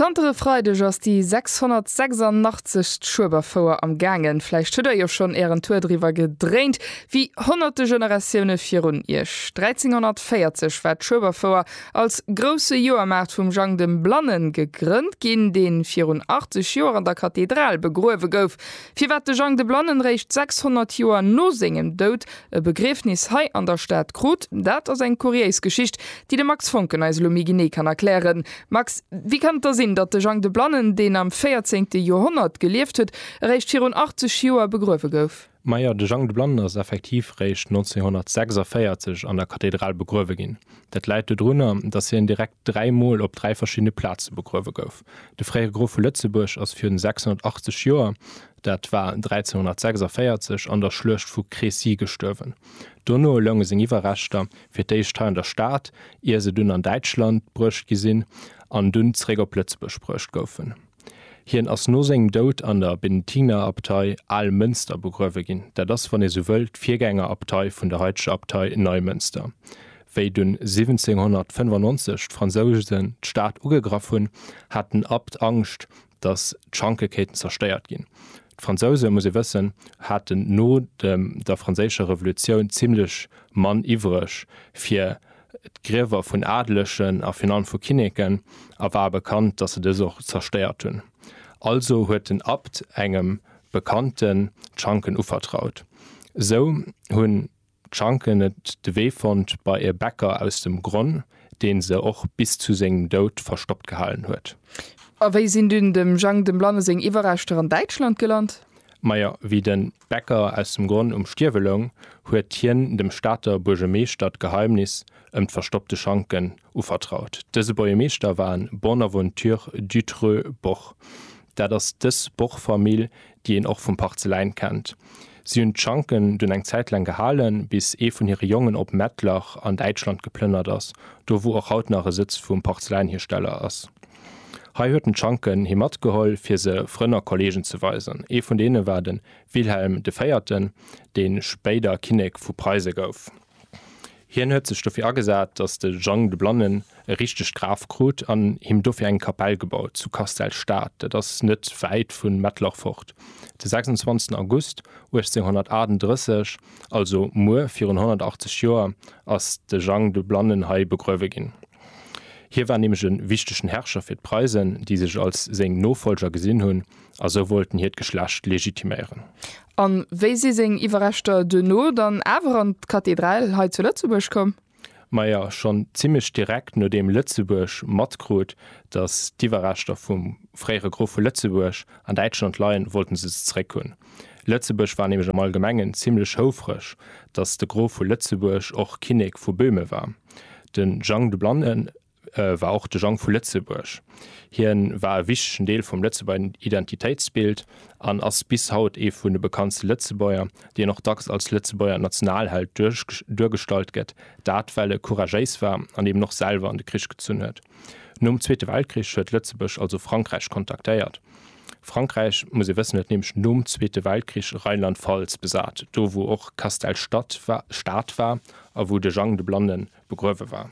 Zanter e Freideg ass déi 686. Schueberfouer am gaangen. Vläicht hutt der jo schonn ären Tour driwwer gedréint, wéi honnerte Generatioune virun iech. 1340 war d'Schueberfouer als grousse Joermaart vum Jang dem Blannen gegrënnt ginn, deen virun 80 Joer an der Kathedral begruewe gouf. Firwat de Jang de Blannen réischt 600 Joer no sengem Doud e Begriefnis hei an der Stad krut, dat ass eng kuriéis Geschicht, déi de Max Foncken eis elo méi genee kann erklären. Max, wéi kann et da sinn, datt de Jang de Blannen, deen am véierzéngte Joerhonnert gelieft huet, eréischt virun 80 Joer begruewe gouf? Majo, de Jang de Blannen ass effektiv réischt 1946 an der Kathedral begruewe ginn. Dat läit dodrunner, datt hien direkt dräi Mol op dräi verschiddene Plaze begruewe gouf. De fréiere Grof vu Lëtzebuerg ass virun 680 Joer, dat war 1346, an der Schluecht vu Crécy gestuerwen. Dono lounge seng Iwwerreschter Fir d'éischt hei an der Stad, ier se dunn an Däitschland bruecht gi sinn an dunn zeréck op Lëtzebuerg bruecht goufen. Hien ass no sengem Doud an der Benediktinerabtei Almënster begruewe ginn. Dat ass, wann ee sou wëll, d'Virgängerabtei vun der haiteger Abtei Neumënster. Wéi dunn 1795 d'Fransouse d'Stad ugegraff hunn, hat den Abt Angscht, datt d'Schanke kéinten zerstéiert ginn. D'Fransouse, muss ee wëssen, haten no der Franséischer Revolutioun zimlech Mann iwwreg fir d'Griewer vun Adelegen a virun allem vu Kinneken a war bekannt, datt se dës och zerstéiert hunn. Also huet den Abt engem Bekannten d'Schanken uvertraut. Esou hunn D'Schanken et de Wee fonnt bei e Bäcker aus dem Gronn, deen se och bis zu sengem Doud verstoppt gehalen huet. A wéi sinn dunn dem Jang dem Blanne seng Iwwerreschter an Däitschland gelant? Majo, wéi den Bäcker aus dem Gronn um Stierwe loung, huet hien dem Stater Buergemeeschter d'Geheimnis ëm d'verstoppte Schanken Uvertraut. Dëse Bojemeeschter war en Bonaventure Dutreux Boch. Dat ass dës Boch-Famill, déi een och vum Parzeläin kennt. Si hunn d'Schanken dunn eng Zäit laang gehalen, bis ee vun hire Jongen op Mettlach an Däitschland geplënnert ass, do wou och haut nach e Sëtz vum Parzeläinhiersteller ass. Hei huet en d'Schanken hi matgeholl, fir se Frënn a Kolleegen ze weisen. Ee vun deene war de Wilhelm de Véierten, dee spéider Kinnek vu Preise gouf. Hien huet sech dofir agesat, datt de Jang de Blannen e richtegt Graf krut an him dofir eng Kapell gebaut zu Castell-Stad, dat ass net wäit vu Mettlach fort. De 26 August 1838, also muer virun 180 Joer, ass de Jang de Blannen hei begruewe ginn. Hie war nämlech e wichtegen Herrscher fir d'Preisen, déi sech als seng Nofollger gesinn hunn, a sou wollten hiert Geschlecht legitiméieren. A wéi si seng Iwwerreschter duerno dann awer an d'Kathedral hei zu Lëtzebuerg komm? Maja, schonn zimmlech direkt nodeem Lëtzebuerg matkrut, datt d'Iwwerreschter vum fréiere Grof vu Lëtzebuerg an Däitschland leien, wollte se se zeréck hunn. Lëtzebuerg war nämlech am Allgemengen zimmlech houfreg, datt de Grof vu Lëtzebuerg och Kinnek vu Böhmen war. De Jang de Blannen war och de Jang vu Lëtzebuerg. Hien war e wichtegen Deel vum Lëtzebuerger Identitéitsbild an ass bis haut ee vun de bekanntste Lëtzebuerger, deen och dacks als Lëtzebuerger Nationalheld duergestallt gëtt, dat well e couragéis war an eben och selwer an de Krich gezunn huet. Nom Zweete Weltkrich huet Lëtzebuerg also Frankräich kontaktéiert. Frankräich, muss ee wëssen, huet nämlech nom Zweete Weltkrich Rheinland-Pfalz besat, do wou och Castell Stad war a wou de Jang de Blannen begruewe war.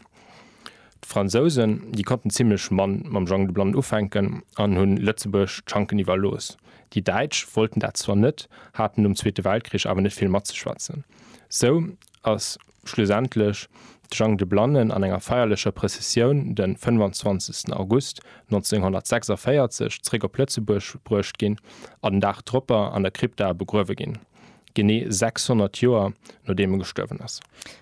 D'Fransousen, déi konnten zimlech mann mam Jang de Blannen ufänken an hunn Lëtzebuerg d'Schanken iwwerlooss. Déi Däitsch wollten dat zwar net, haten nom Zweete Weltkrich awer net vill matzeschwätzen. Sou ass schlussendlech de Jang de Blannen an enger feierlecher Prëssessioun de 25 August 1946 zréck op Lëtzebuerg bruecht ginn a den Dag dropper an der Krypta begruewe ginn, genee 600 Joer nodeem e gestuerwen ass.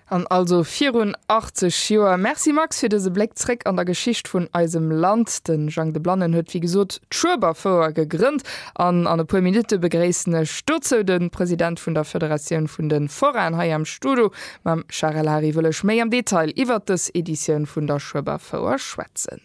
An also virun 80 Joer. Merci Max fir dëse Bléck zréck an der Geschicht vun eisem Land. De Jang de Blannen huet wéi gesot d'Schueberfouer gegrënnt an an e puer Minutte begréissen ech dozou de President vun der Federatioun vun de Forainen hei am Studo. Mam Charel Hary wëll ech méi am Detail iwwert dës Editioun vun der Schueberfouer schwätzen.